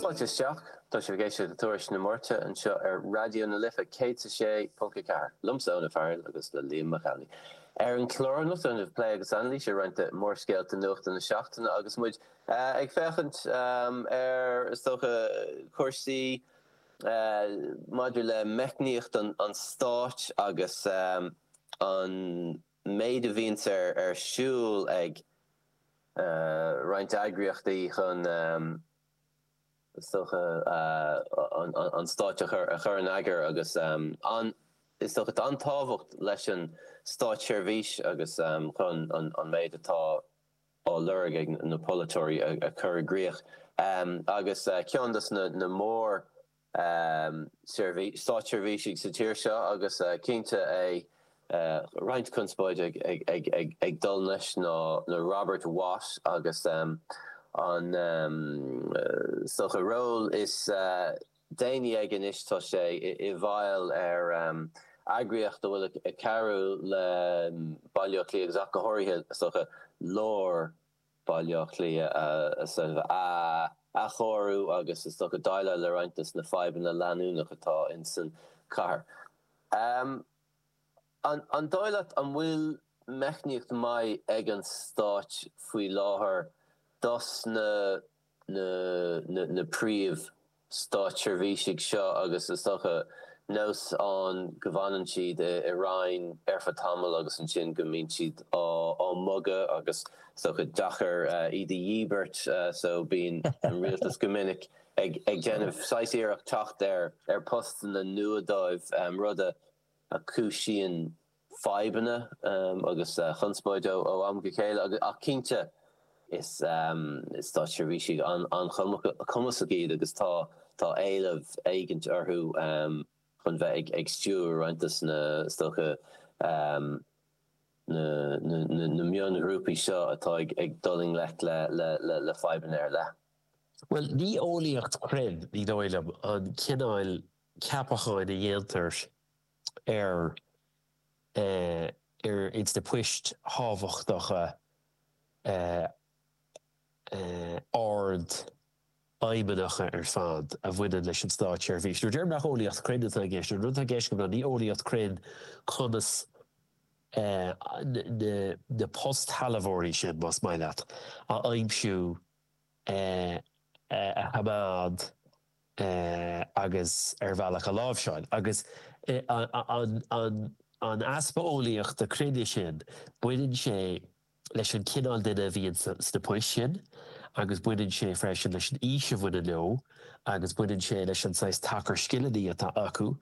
Fáilte isteach. Tá sibh ag éisteacht le Tuairisc na Máirte anseo ar Raidió na Life 106.4, liomsa, Eoin Ó Fearghail, agus le Liam Mac Amhlaigh. Ar an chlár anocht déanfaimid plé agus anailís ar roinnt de mhórscéalta nuachta na seachtaine agus muid ag féachaint ar, is dócha, cúrsaí maidir le meicníocht an stáit agus an an méid a bhíonns ar siúl ag roinnt eagraíochtaí chun is dócha an stát a chur in eagar agus is dócha an tábhacht leis an státseirbhís agus chun an méid atá á lorg ag na polaiteoirí a chur i gcrích. Agus ceann de na mór. státseirbhísigh sa tír seo agus cinnte é roinnt conspóide ag dul leis ná Robert Watt agus an is dócha ról is déanaí aige anois tá sé i bhfeighil ar eagraíocht a bhfuil ag cabhrú le Baile Átha Cliath agus ach go háirithe is dócha lár Bhaile Átha Cliath a athchóiriú agus is dócha déileáil le roinnt dos na fadhbanna leanúnacha atá insan chathair. An dóigh leat an bhfuil meicníocht maith ag an stáit faoi láthair dos na. na príomhstátseirbhísigh seo agus is dócha nós ann go bhfanann siad i Roinn ar feadh tamaill agus ansin go mbíonn siad á mbogadh agus is dócha deacair iad a dhíbirt so bíonn an Rialtas go minic ag déanamh saghas iarracht teacht ar postanna nua dóibh, rud a chúisíonn fadhbanna agus conspóid ó am go chéile ach cinnte is státseirbhísigh an-chumasach iad agus tá éileamh éigint orthu chun bheith ag stiúradh roinnt dos na is dócha na mionghrúpaí seo atá ag dul i ngleic le fadhbanna ar leith. Bhuel, ní eolaíocht chruinn, ní dóigh liom, an cineál ceapacháin a dhéantar ar ar ins na poist thábhachtacha ardfheidhmeannacha ar fad a bhaineann leis an státseirbhís. Nuair a deirim nach eolaíocht cruinn atá i gceist, an rud atá i gceist agam ná ní eolaíocht cruinn conas na postsealbhóirí sin, más maith leat, a aimsiú, a choimeád, agus ar bhealach a láimhseáil, agus an easpa eolaíochta chruinn sin, baineann sé leis an chineál duine a bhíonn sna poist sin agus baineann sé freisin leis an aois a bhaineann leo agus baineann sé leis an saghas tacar scileanna atá acu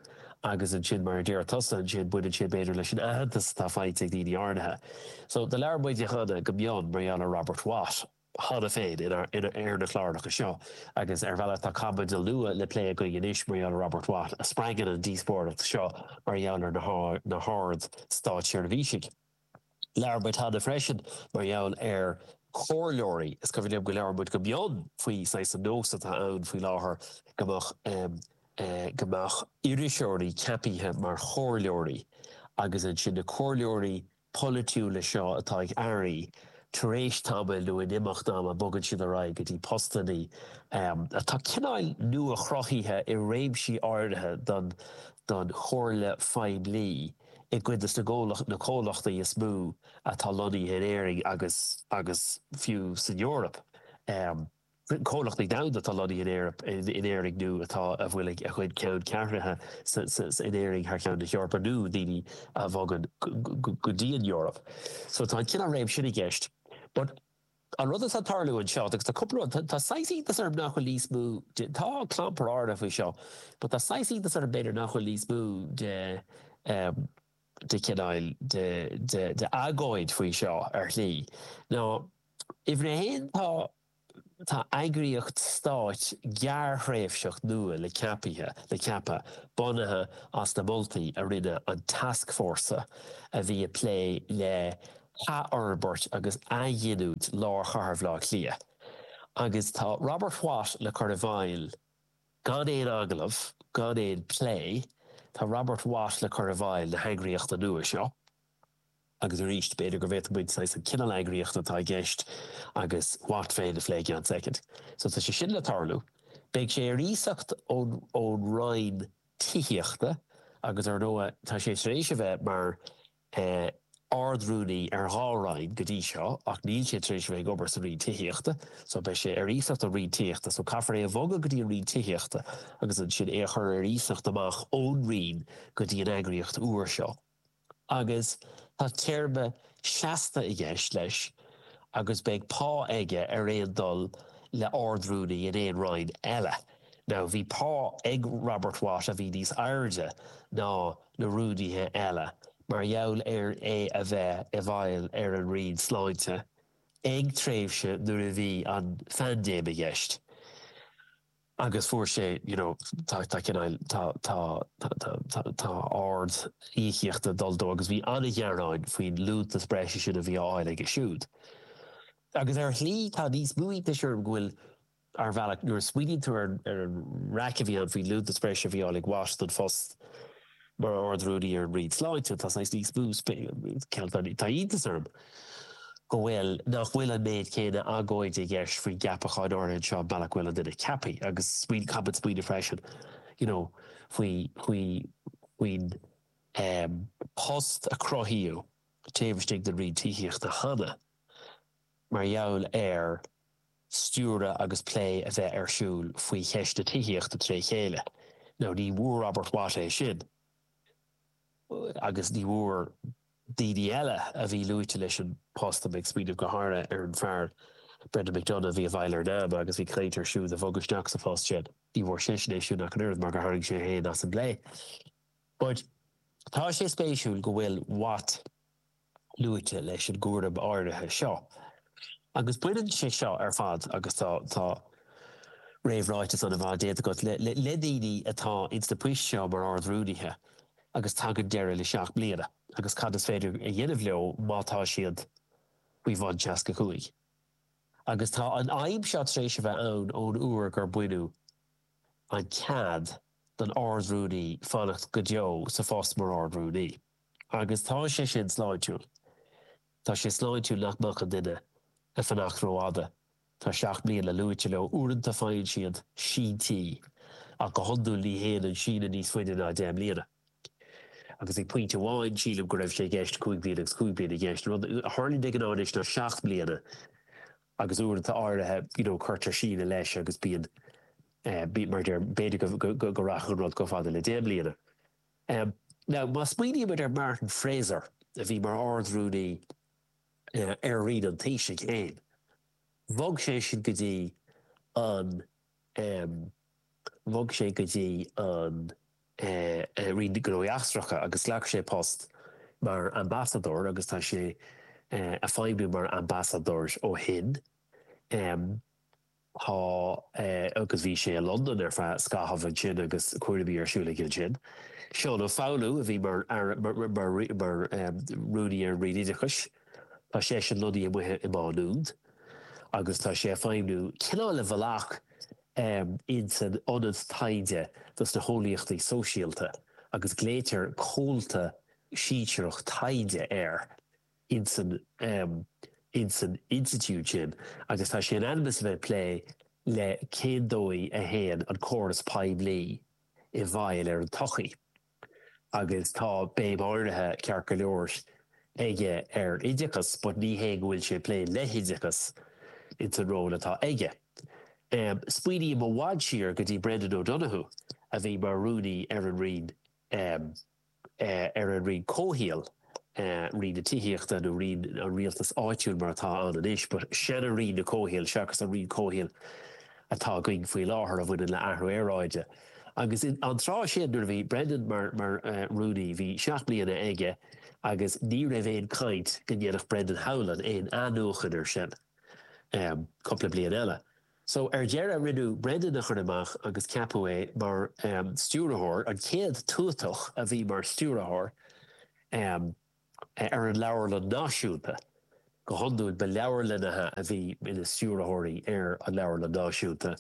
agus ansin, mar a deir tusa, ansin baineann sé b'fhéidir leis an aitheantas atá faighte ag daoine áirithe. So, labhair muid cheana go mion mar gheall ar Robert Watt. cheana féin ar na cláracha seo agus ar bhealach tá caibidil nua le plé againn anois mar gheall ar Robert Watt a spreagann an díospóireacht seo mar gheall ar na hard-státseirbhísigh. Labhair muid cheana freisin mar gheall ar chomhairleoirí. Is cuimhin liom gur labhair muid go mion faoi saghas an nós atá ann faoi láthair go mbeadh iriseoirí ceapaithe mar chomhairleoirí agus ansin na comhairleoirí polaitiúla seo atá ag airí, tar éis tamaill nó in imeacht ama bogann siad ar aghaidh go dtí postannaí atá cineáil nua-chruthaithe i réimsí áirithe don don chomhairle phoiblí i gcuid dos na gcomhlacht na comhlachtaí is mó atá lonnaithe in Éirinn agus agus fiú san Eoraip. comhlachtaí domhanda atá lonnaithe in Éirinn, in Éirinn nó atá, a bhfuil a gcuid ceanncheathraithe in Éirinn thar cheann na hEorpa, nó daoine a bhogann go dtí an Eoraip. So tá an cineál réim sin i gceist. But an rud atá ag tarlú anseo, agus tá cúpla rud, tá saghas iontas orm nach bhfuil níos mó de, tá, clampar áirithe faoi seo, but tá saghas iontas orm b'fhéidir nach bhfuil níos mó de, de chineál de agóid faoi seo ar shlí. Now, uimhir a haon, tá tá eagraíocht stáit gearrthréimhseach nua le ceapaithe le ceapadh, bunaithe as na moltaí a rinne an tascfhórsa a bhí ag plé le hathfhorbairt agus athghiniúint lár chathair Bhaile Átha Cliath. Agus tá Robert Watt le cur i bhfeighil Gan aon agallamh, gan aon plé, tá Robert Watt le cur i bhfeighil na heagraíochta nua seo. Agus arís, b'fhéidir go bhféadfadh muid saghas an cineál eagraíochta atá i gceist agus Watt féin a phlé i gceann soicind. So tá sé sin le tarlú. Beidh sé ar iasacht ón Roinn Tithíochta agus, ar ndóigh, tá sé tar éis a bheith mar Ard-Rúnaí ar dhá Roinn go dtí seo ach níl sé tar éis a bheith ag obair sa Roinn Tithíochta so beidh sé ar iasacht ón Roinn Tithíochta so caithfear é a bhogadh go dtí an Roinn Tithíochta agus ansin é a chur ar iasacht amach ón Roinn go dtí an eagraíocht úr seo agus tá téarma seasta i gceist leis agus beidh pá aige ar aon dul le Ard-Rúnaí in aon Roinn eile. Now bhí pá ag Robert Watt a bhí níos airde ná. na rúnaithe eile mar gheall ar é a bheith i bhfeighil ar an Roinn Sláinte ag tréimhse nuair a bhí an phaindéim i gceist agus fuair sé you know tá tá cineál tá tá tá tá ard íocaíocht ag dul dó agus bhí an-ghearáin faoin liúntas breise sin a bhí á fháil aige siúd agus ar shlí tá níos mó iontais orm go bhfuil Ar bhealach, nuair a smaoiníonn tú ar an raic a bhí ann faoin liúntas breise a bhí á fháil ag Watt don phost mar Ard-Rúnaí ar an Roinn Sláinte, tá saghas níos mó iontas, tá iontas orm go bhfuil, nach bhfuil an méid céanna agóide i gceist faoin gceapachán áirithe seo, an bealach a bhfuil an duine ceaptha. Agus smaoinigh, caithfimid smaoineamh freisin, you know, faoi, faoi, faoin post a cruthaíodh taobh istigh den Roinn Tithíochta cheana. mar gheall ar stiúradh agus plé a bheith ar siúl faoi cheist na tithíochta tré chéile. Now ní bhfuair Robert Watt é sin agus ní bhfuair daoine eile a bhí luaite leis an post, tá mé ag smaoineamh go háirithe ar an fear Brendan McDonagh a bhí i bhfeighil ar Nama agus bhí caint ar é siúd a bhogadh isteach sa phost sin, ní bhfuair seisean é sin ach an oiread mar gur tharraing sé féin as an bplé. But tá sé spéisiúil go bhfuil Watt, luaite leis an gcúram áirithe seo. Agus baineann sé seo ar fad, agus tá tá réamhráiteas ana-mhaith déanta agat, le daoine atá ins na poist seo mar Ard-Rúnaithe agus tagann deireadh le seacht mbliana agus cad is féidir a dhéanamh leo má tá siad faoi bhun seasca cúig. Agus tá an fhadhb seo tar éis a bheith ann ón uair gur baineadh an cead don Ard-Rúnaí fanacht go deo sa phost mar Ard-Rúnaí. Agus tá sé sin sláintiúil. Tá sé sláintiúil nach mbeadh an duine ag fanacht rófhada. Tá seacht mbliana luaite leo. Uaireanta faigheann siad síntí ach go hiondúil ní théann an síneadh níos faide ná deich mbliana. Agus ag pointe amháin sílim go raibh sé i gceist cúig bliana agus cúig bliana i gceist. Rud a tharlaíonn de ghnáth anois ná seacht mbliana agus uaireanta áirithe you know cuirtear síneadh leis agus bíonn mar a deir b'fhéidir go rachadh an rud chomh fada le deich mbliana. Now, má smaoinímid ar Martin Fraser, a bhí mar Ard-Rúnaí ar Roinn an Taoisigh féin, bhog sé sin go dtí an, bhog sé go dtí an Roinn Gnóthaí Eachtracha agus ghlac sé post mar ambasadóir agus tá sé ag feidhmiú mar ambasadóir ó shin. Tá, agus bhí sé i Londain ar feadh scaithimh ansin agus cúraimí ar siúl aige ansin. Seán Ó Foghlú a bhí mar mar rúnaí ar an Roinn Oideachais, tá seisean lonnaithe amuigh i Má Nuad agus tá sé ag feidhmniú cineál de bhealach ins an ionad taighde dos na heolaíochtaí sóisialta agus glaoitear comhalta sinsearach taighde air ins an institiúid sin agus tá sé in ainm is a bheith ag plé le cén dóigh a n-imríonn an córas poiblí i bhfeidhm ar an tsochaí agus tá béim áirithe, ceart go leor, aige ar oideachas but ní hé go bhfuil sé ag plé le hoideachas ins an ról atá aige. Smaoiním i bhfad siar go dtí Brendan O'Donoghue a bhí mar rúnaí ar an roinn ar an roinn comhshaoil, roinn na tithíochta nó roinn an rialtais áitiúil mar atá ann anois, but sin roinn na comhshaoil seachas an roinn comhshaoil atá againn faoi láthair a bhaineann le athrú aeráide. Agus an tráth sin nuair a bhí Brendan mar mar rúnaí, bhí seacht mbliana aige agus ní raibh aon caint go ndéanfadh Brendan Howlin aon athnuachan ar sin go cúpla bliain eile. So, ar deireadh, rinneadh Brendan a chur amach agus ceapadh é mar stiúrthóir, an chéad tuatach a bhí mar stiúrthóir ar an Leabharlann Náisiúnta. Go hiondúil, ba leabharlannaithe a bhí ina stiúrthóirí ar an Leabharlann Náisiúnta,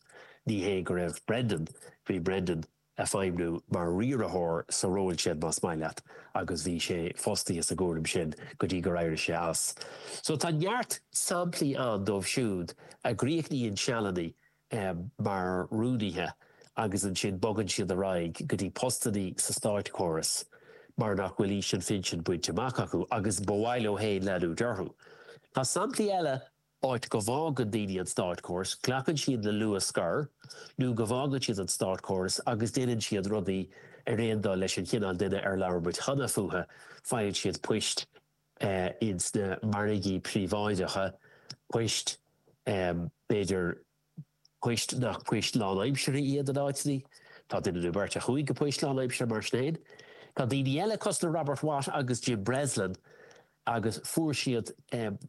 ní hé go raibh Brendan, bhí Brendan, ag feidhmiú mar riaraitheoir sa ról sin, más maith leat, agus bhí sé fostaithe sa gcúram sin go dtí gur éirigh sé as. So tá neart samplaí ann dóibh siúd a gcríochnaíonn sealanna mar rúnaithe agus ansin bogann siad ar aghaidh go dtí postannaí sa státchóras mar nach bhfuil aois an phinsin bainte amach acu agus ba mhaith leo féin leanúint orthu. Tá samplaí eile. áit go bhfágann daoine an státchóras, glacann siad le luath scor nó go bhfágann siad an státchóras agus déanann siad rudaí ar aon dul leis an chineál duine ar labhair muid cheana fúthu, faigheann siad poist ins na margaí príobháideacha, poist, b'fhéidir, poist nach poist lánaimseartha iad in áiteanna. Tá duine nó beirt a chuaigh go poist lánaimseartha mar sin féin. Tá daoine eile, cosúil le Robert Watt agus Jim Breslin, agus fuair siad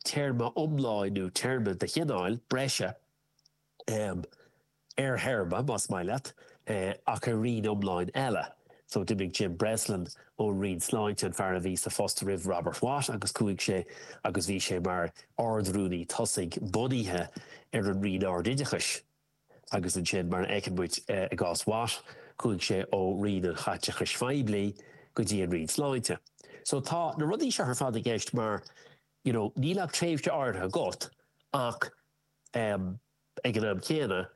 téarma iomlán nó téarma de chineál breise ar théarma, más maith leat, ach ar roinn iomlán eile. So d'imigh Jim Breslin ón Roinn Sláinte, an fear a bhí sa phost roimh Robert Watt, agus chuaigh sé agus bhí sé mar Ard-Rúnaí tosaigh bunaithe ar an Roinn Ardoideachais. Agus ansin, mar a fheiceann muid i gcás Watt, chuaigh sé ó Roinn an Chaiteachais Phoiblí go dtí an Roinn Sláinte. So tá na rudaí seo ar fad i gceist mar, you know, níl ach tréimhse áirithe agat ach, eh, Ag an am céanna,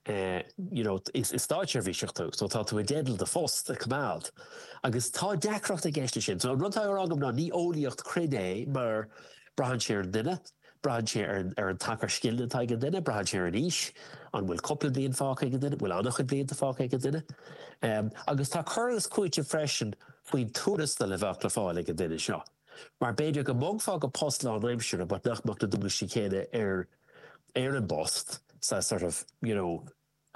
you know, is státseirbhíseach tú, so tá tú i dteideal do phost, a choimeád. Agus tá deacracht i gceist leis sin. So an rud atá á rá agam ná, ní eolaíocht chruinn é, mar braitheann sé ar an duine, braitheann sé ar an, ar an tacar scileanna atá ag an duine, braitheann sé ar an aois, an bhfuil cúpla bliain fágtha ag an duine, an bhfuil an-chuid blianta fágtha ag an duine. Agus tá cur agus cúiteamh freisin faoin tuarastal a bheadh le fáil ag an duine seo. Mar b'fhéidir go mbogfá go post lánaimseartha but nach mbeadh na dualgaisí céanna air, ar an bpost sa sort of, you know,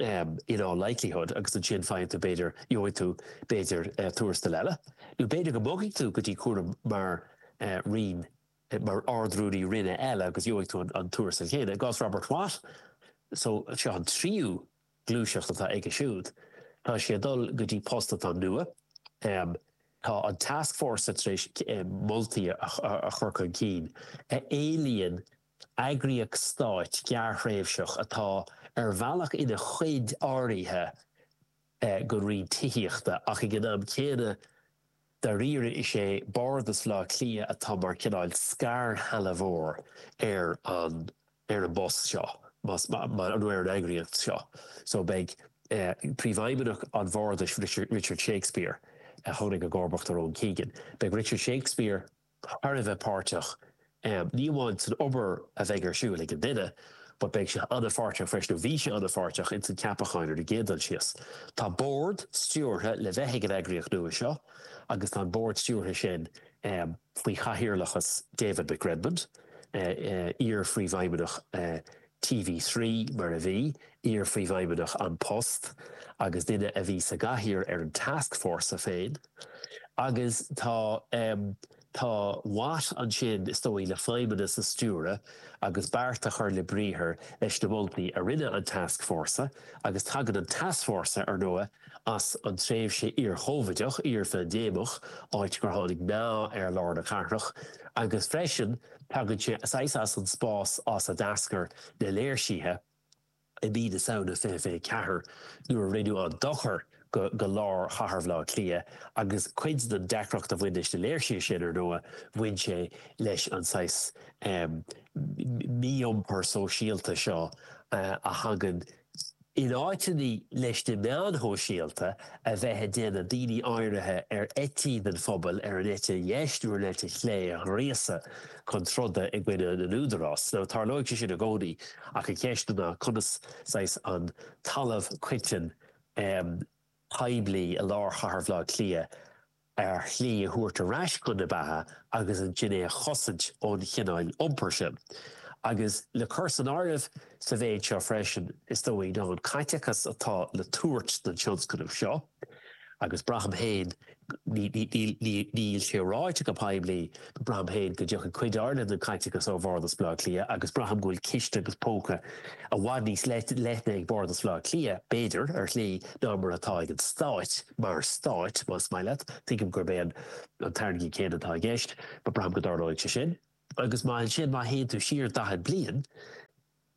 em, in all likelihood agus ansin faigheann tú b'fhéidir, gheobhaidh tú b'fhéidir eh, tuarastal eile. Nó b'fhéidir go mbogfadh tú go dtí cúram mar eh, roinn, eh, mar ardrúnaí roinne eile agus gheobhaidh tú an, an tuarastal céanna. I gcás Robert Watt, so seo an tríú gluaiseacht atá aige siúd. Tá sé ag dul go dtí post atá nua. Tá an task force tar éis moltaí a chur chun cinn a éilíonn eagraíocht stáit gearrthréimhseach atá ar bhealach ina chuid áirithe den roinn tithíochta ach ag an am céanna Dáiríre is é Bardas Bhleá Cliath atá mar cineál scairshealbhóir ar an ar an bpost seo nó ar an eagraíocht seo so beidh Príomhfheidhmeannach an Bhardais Richard Shakespeare a tháinig i gcomharbacht ar Owen Keegan, beidh Richard Shakespeare. thar a bheith páirteach, ní amháin san obair a bheidh ar siúl ag an duine, but beidh sé an-pháirteach freisin, nó bhí sé an-pháirteach, insan gceapachán ar an gcéad dul síos. Tá bord stiúrtha le bheith ag an eagraíocht nua seo agus tá an bord stiúrtha sin faoi chathaoirleachas David McRedmond, iar-phríomhfheidhmeannach TV3, mar a bhí, iar-Phríomhfheidhmeannach An Post agus duine a bhí sa gcathaoir ar an tascfhórsa féin. Agus tá, em, tá Watt ansin, is dóigh, le feidhmeannas a stiúradh agus beart a chur le briathar leis na moltaí a rinne an tascfhórsa agus tagann an tascfhórsa, ar ndóigh, as an tréimhse iarchóivideach, iarphaindéimeach, áit gur tháinig meath ar lár na cathrach agus freisin, Tagann sé saghas as an spás as a d'eascair na léirsithe i mí na Samhna 2024 nuair a rinneadh an dochar go lár chathair Bhleá Cliath agus cuid den deacracht a bhain leis na léirsithe sin, ar ndóigh, bhain sé leis an saghas mí-iompar sóisialta seo a thagann In áiteanna leis na meáin shóisialta a bheith ag déanamh, daoine áirithe ar eití den phobal ar an eite dheis nó ar an eite chlé a ghríosadh chun troda i gcoinne na n-údarás. So, tarlóidh sé sin i gcónaí ach an cheist ná conas, saghas, an talamh coiteann, em, poiblí i lár chathair Bhleá Cliath, ar shlí a thabhairt ar ais chun na beatha agus ansin é a chosaint ón chineál iompair sin. Agus le cur san áireamh sa mhéid seo freisin, is dóigh, ná an caiteachas atá le tabhairt don tionscnamh seo, agus braithim féin, níl sé ráite go poiblí, Braithim féin go dtiocfaidh cuid áirithe den chaiteachas ó Bhardas Bhaile Átha Cliath agus braithim go bhfuil ciste agus póca i bhfad níos leithne ag Bardas Bhaile Átha Cliath, b'fhéidir, ar shlí, ná mar atá ag an Stáit, mar Stáit, más maith leat. Tuigim gurb é an t-airgead céanna atá i gceist, but braithim go dtarlóidh sé sin. Agus má ansin, má théann tú siar daichead bliain,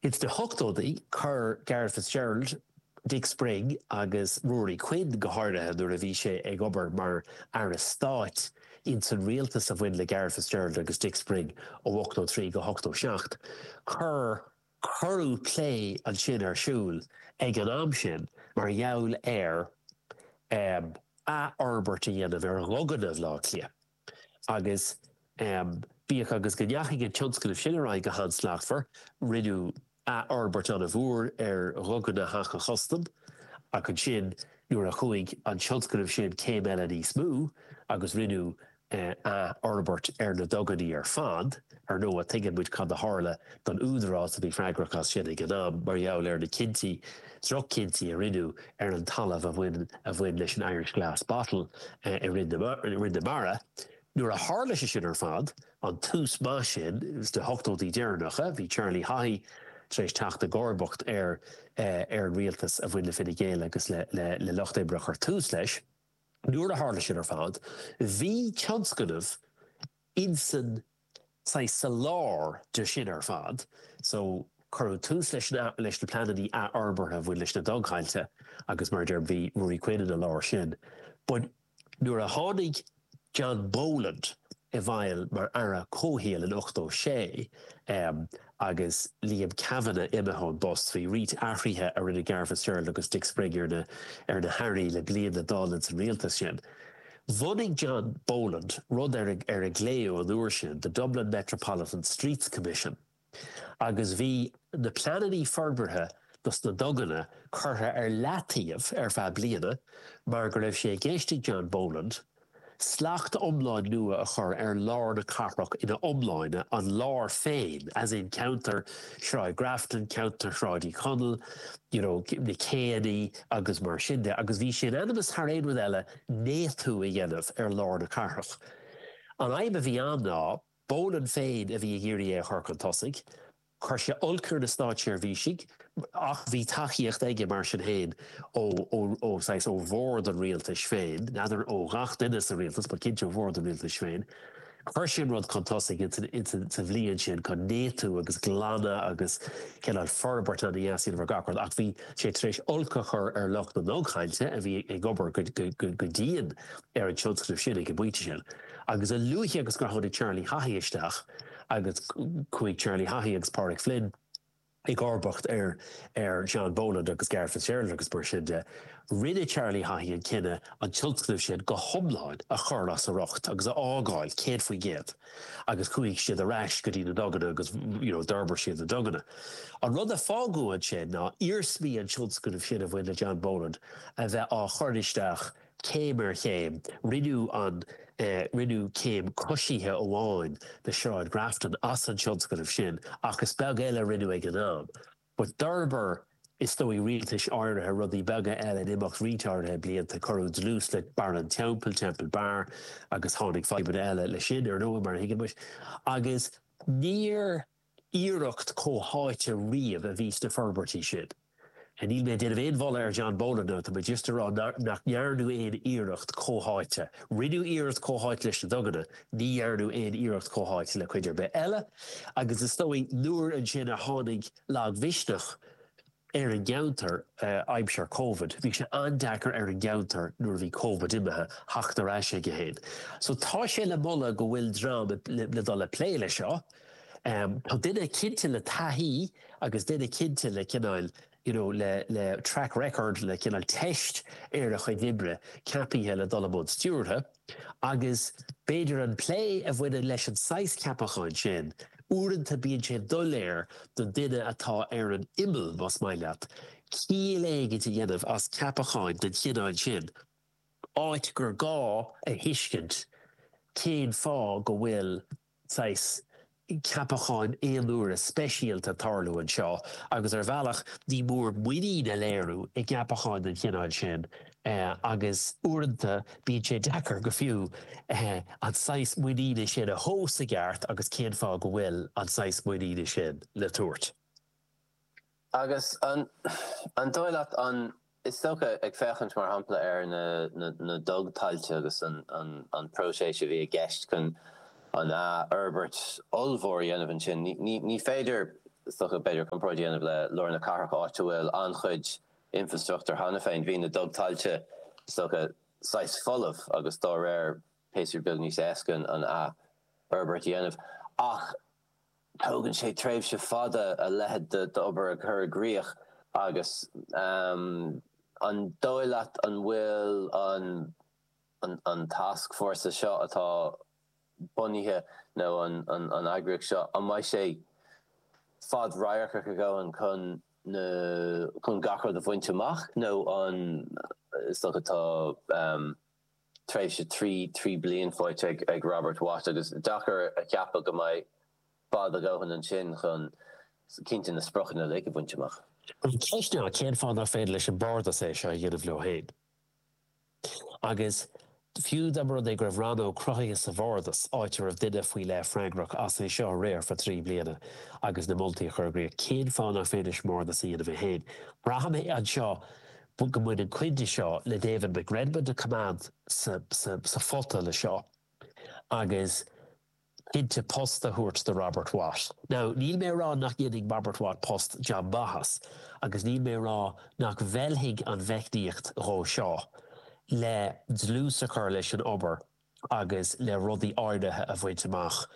Ins na hochtódaí chuir Garret Fitzgerald, Dick Spring agus Ruairí Quinn, go háirithe nuair a bhí sé ag obair mar Aire Stáit ins an rialtas a bhain le Garret Fitzgerald agus Dick Spring ó ochtó trí go ochtó seacht, chuir cuireadh plé ansin ar siúl ag an am sin mar gheall ar athfhorbairt a dhéanamh ar dhuganna Bhaile Átha Cliath. Agus bíodh agus go ndeachaigh an tionscnamh sin ar aghaidh go han-slachtmhar, rinneadh athfhorbairt an-mhór ar Dhuganna Theach an Chustaim, ach ansin nuair a chuaigh an tionscnamh sin céim eile níos mó agus rinneadh athfhorbairt ar na duganna ar fad, Ar ndóigh, tuigeann muid cad a tharla don údarás a bhí freagrach as sin ag an am mar gheall ar na cinntí, droch-chinntí, a rinneadh ar an talamh a bhain a bhain leis an Irish Glass Bottle i Rinn na Mara. Nuair a tharla sé sin ar fad, an tús maith sin do ochtóidí deireanacha, bhí Charlie Haughey tar éis teacht i gcomharbacht ar ar an rialtas a bhain le Fine Gael agus le Lucht Oibre a chuir tús leis, nuair a tharla sin ar fad, bhí tionscnamh. Insan saghas sa lár de sin ar fad so, cuireadh tús leis na leis na pleanannaí athfhorbartha a bhain leis na dugthailte agus mar a deir bhí Ruairí Quinn ina lár sin but nuair a tháinig John Boland i bhfeidhm mar Aire Comhshaoil in ochtó sé, Agus Liam Kavanagh imithe ón bpost, bhí roinnt athruithe a rinne Garret Fitzgerald agus Dick Spring ar na ar na hairí le bliain le dul ins an rialtas sin. Bhunaigh John Boland rud ar ar a glaodh an uair sin The Dublin Metropolitan Streets Commission agus bhí na pleanannaí forbartha dos na duganna curtha ar leataobh ar feadh bliana mar go raibh sé i gceist ag John Boland Slacht iomlán nua a chur ar lár na cathrach ina iomláine, an lár féin, as in ceantar Shráid Grafton, ceantar Shráid Uí Chonaill, you know, na céannaí agus mar sin de. Agus bhí sé in ainm is thar aon rud eile néatú a dhéanamh ar lár na cathrach. An fhadhb a bhí ann ná, Boland féin a bhí ag iarraidh é a chur chun tosaigh, Chuir sé olc ar na státseirbhísigh ach bhí tacaíocht aige mar sin féin ó bhord an rialtais féin, n'fheadar ó ghach duine sa rialtas but cinnte ó bhord an rialtais féin. Chuir sé an rud chun tosaigh sa bhliain sin, chun néataú agus glanadh agus cineál forbairt ó thaobh deasú ar gach rud ach bhí sé tar éis olc a chur ar lucht na ndugthailte a bhí ag obair go dian ar an tionscnamh sin ag an bpointe sin. Agus a luaithe agus a tháinig Charlie Haughey isteach, agus chuaigh Charlie Haughey agus Pádraig Flynn i gcomharbacht ar John Boland agus Garret Fitzgerald agus mar sin de. Rinne Charlie Haughey an cinneadh an tionscnamh sin go hiomlán a chur as a riocht agus a fhágáil céad faoin gcéad agus chuaigh siad ar ais go dtí na duganna agus d'fhorbair siad na duganna. An rud a fágadh ansin ná iarsmaí an tionscnaimh sin a bhain le John Boland a bheith á chur isteach Céim ar chéim, rinneadh an, rinneadh céim coisithe amháin de Shráid Grafton as an tionscnamh sin ach is beag eile a rinneadh ag an am. But d'fhorbair is dóigh rialtais áirithe rudaí beaga eile in imeacht roinnt áirithe blianta, cuireadh dlús le Barr an Teampaill, Temple Bar, agus tháinig fadhbanna eile leis sin, ar ndóigh, mar a thuigeann muid. Agus níor. iarracht comhtháite riamh a bhí sna forbairtí sin. Níl mé ag déanamh aon mholadh ar John Boland, tá mé just ag rá nach ndearnadh aon iarracht chomhtháite. Rinneadh iarracht chomhtháite leis na duganna, ní dhearnadh aon iarracht chomhtháite le cuid ar bith eile agus is dóigh nuair ansin a tháinig lagmhisneach, ar an gceantar aimsir Covid. Bhí sé an-deacair ar an gceantar nuair a bhí Covid imithe, theacht ar ais go héasca. So tá sé le moladh go bhfuil dream le dul ag plé leis seo. Tá duine cinnte le taithí agus duine cinnte le cineál you know le le track record le cineál teist ar a chuid oibre ceapaithe le dul i mbun stiúrtha. Agus b'fhéidir an plé a bhaineann leis an saghas ceapacháin sin, uaireanta bíonn sé doiléir don duine atá ar an imeall, más maith leat, ciall éicint a dhéanamh as ceapacháin den chineál sin, áit gur gá a thuiscint cén fáth go bhfuil saghas ceapacháin aonuaire speisialta ag tarlú anseo agus ar bhealach ní mór muinín a léiriú i gceapacháin den chineál sin agus uaireanta bíonn sé deacair go fiú an saghas muiníne sin a thomhas i gceart agus cén fáth go bhfuil an saghas muiníne sin le tabhairt. Agus an dóigh leat an, is dócha, ag féachaint mar shampla ar na dugthailte agus an próiseas a bhí i gceist chun an fhorbairt ollmhór a dhéanamh ansin, ní féidir, is dócha, b'fhéidir, comparáid a dhéanamh le lár na cathrach áit a bhfuil an-chuid infrastruchtúir cheana féin. Bhí na dugthailte, is dócha, saghas folamh agus dá réir píosa beag níos éasca an fhorbairt a dhéanamh. Ach. Tógann sé tréimhse fada a leithéid d'obair a chur i gcrích agus an dóigh leat an bhfuil an tascfhórsa seo atá bunaithe nó an eagraíocht seo, an mbeidh sé fad-radharcach a dhóthain chun gach rud a bhaint amach nó an is dócha tá. tréimhse trí trí bliain faighte ag Robert Watt agus deacair a cheapadh go mbeidh fad a dhóthain ansin chun cinnte na spriocanna uilig a bhaint amach. An cheist ná cén fáth nach féidir leis an mBardas é seo a dhéanamh leo féin? Agus fiú dá mba rud é go raibh rannóg cruthaithe sa Bhardas, áit a raibh duine faoi leith freagrach as é seo a riar for trí bliana agus na moltaí a chur i gcrích, cén fáth nach féidir leis an mBardas a dhéanamh é féin? Braithim anseo go mba iad na cinntí seo le David McRedmond a choimeád sa phota le seo agus cinnte post a thabhairt do Robert Watt. Now, níl mé a rá nach ndéanfaidh Robert Watt post, jab maith as agus níl mé a rá nach bhfeilfidh an mheicníocht nua seo le dlús a chur leis an obair agus le rudaí áirithe a bhaint amach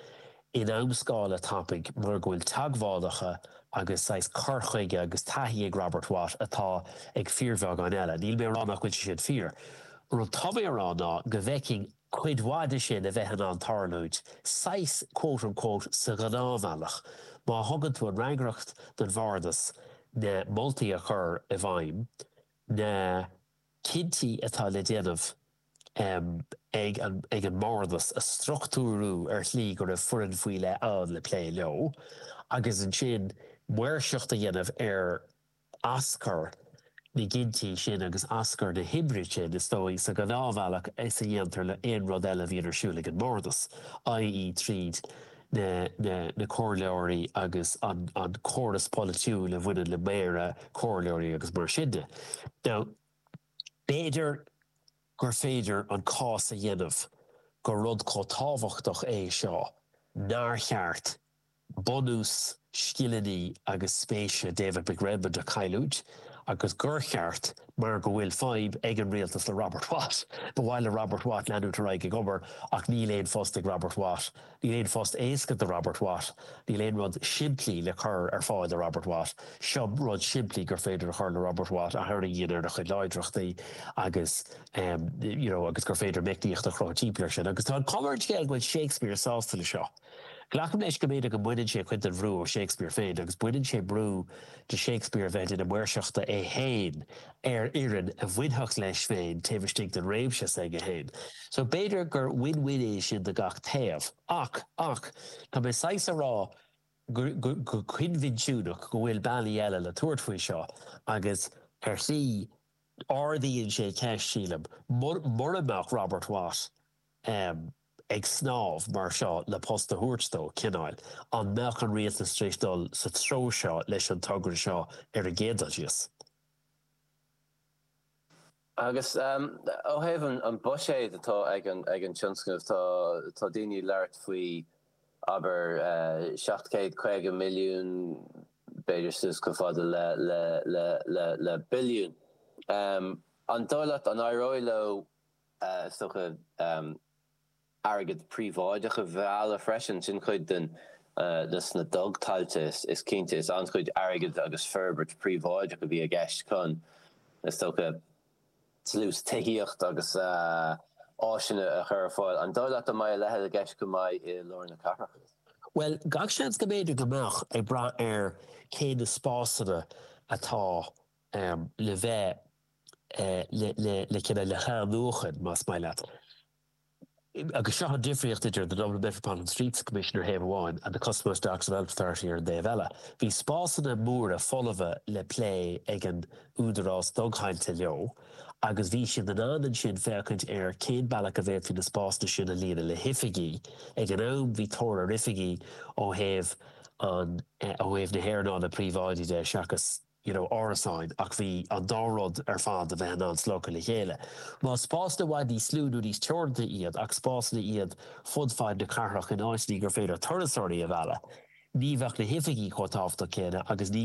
in amscála tapaidh mar go bhfuil teagmhálacha agus saghas cur chuige agus taithí ag Robert Watt atá ag fíorbheagán eile. Níl mé a rá nach bhfuil sé sin fíor. Rud atá mé a rá ná go bhfeicfinn cuid mhaith de sin a bheith in ann tarlúint, saghas quote unquote sa ghnáthbhealach, má thugann tú an fhreagracht don Bhardas na moltaí a chur i bhfeidhm, na. cinntí atá le déanamh ag an mBardas a struchtúrú ar shlí go raibh foireann faoi leith ann le plé leo agus ansin maoirseacht a dhéanamh ar aschur na gcinntí sin agus aschur na hoibre sin, is dóigh, sa ghnáthbhealach is a dhéantar le haon rud eile a bhíonn ar siúl ag an mBardas, ie tríd na comhairleoirí agus an córas polaitiúil a bhaineann le méara, comhairleoirí agus mar sin de. Now, b'fhéidir gur féidir an cás a dhéanamh gur rud chomh tábhachtach é seo nár cheart bunús scileanna agus spéise David McRedmond a chailliúint, agus gur cheart, mar go bhfuil fadhb ag an rialtas le Robert Watt. Ba mhaith le Robert Watt leanúint ar aghaidh ag obair, ach níl aon phost ag Robert Watt. Níl aon phost éasca do Robert Watt. Níl aon rud simplí le cur ar fáil do Robert Watt. Seo rud simplí gur féidir a chur le Robert Watt, a tharraingíonn ar a chuid láidreachtaí agus you know agus gur féidir meicníocht a chruthú timpeall air sin. Agus tá an chuma ar an scéal go bhfuil Shakespeare sásta le seo. Glacaim leis go mb'fhéidir go mbaineann sé cuid den bhrú ó Shakespeare féin agus baineann sé brú ó Shakespeare a bheith i ndáil maoirseachta é féin ar fhoireann a bhainfeadh leis féin taobh istigh den réimse s'aige féin. So b'fhéidir gur win-win é sin do gach taobh. Ach, ach, tá mé saghas a rá go coinbhinsiúnach go bhfuil bealaí eile le tabhairt faoi seo agus ar shlí ardaíonn sé ceist, sílim, mura mbeadh Robert Watt, ag snámh mar seo le post a thabhairt dó, cineáil. An mbeadh an rialtas tar éis dul sa treo seo leis an togra seo ar an gcéad dul síos? Agus ó thaobh an bhuiséid atá ag an tionscnamh, tá daoine ag labhairt faoi, abair, seacht gcéad caoga milliún, b'fhéidir suas chomh fada le billiún. An dóigh leat an éireoidh leo Is dócha airgead príobháideach a mhealladh freisin, sin cuid den, des na dugthailte is cinnte. Is an-chuid airgead agus forbairt príobháideach a bhí i gceist chun, is dócha, dlús tithíocht agus áiseanna a chur ar fáil. An dóigh leat go mbeidh a leithéid i gceist go maith i lár na cathrach? Bhuel, gach seans go mb'fhéidir go mbeadh, ag brath ar cé na spásanna atá le bheith. le cinneadh, le hathnuachan, más maith leat. Agus seo an difríocht idir The Dublin Metropolitan Streets Commission ar thaobh amháin and The Custom House Docks Development Authority ar an dtaobh eile. Bhí spásanna móra folmha le plé ag an údarás dugthailte leo agus bhí siad in ann ansin féachaint ar cén bealach a bhféadfaí na spásanna sin a líonadh le hoifigí. Ag an am bhí tóir ar oifigí ó thaobh an, ó thaobh na hearnála príobháidí de seachas na you know árasáin ach bhí an dá rud ar fad a bheith in ann sleamhnú le chéile. Más spásanna i bhfad níos lú nó níos teoranta iad ach spásanna iad fud fad na cathrach in áiteanna gur féidir turasóirí a mhealladh, ní bheadh na hoifigí chomh tábhachtach céanna agus ní.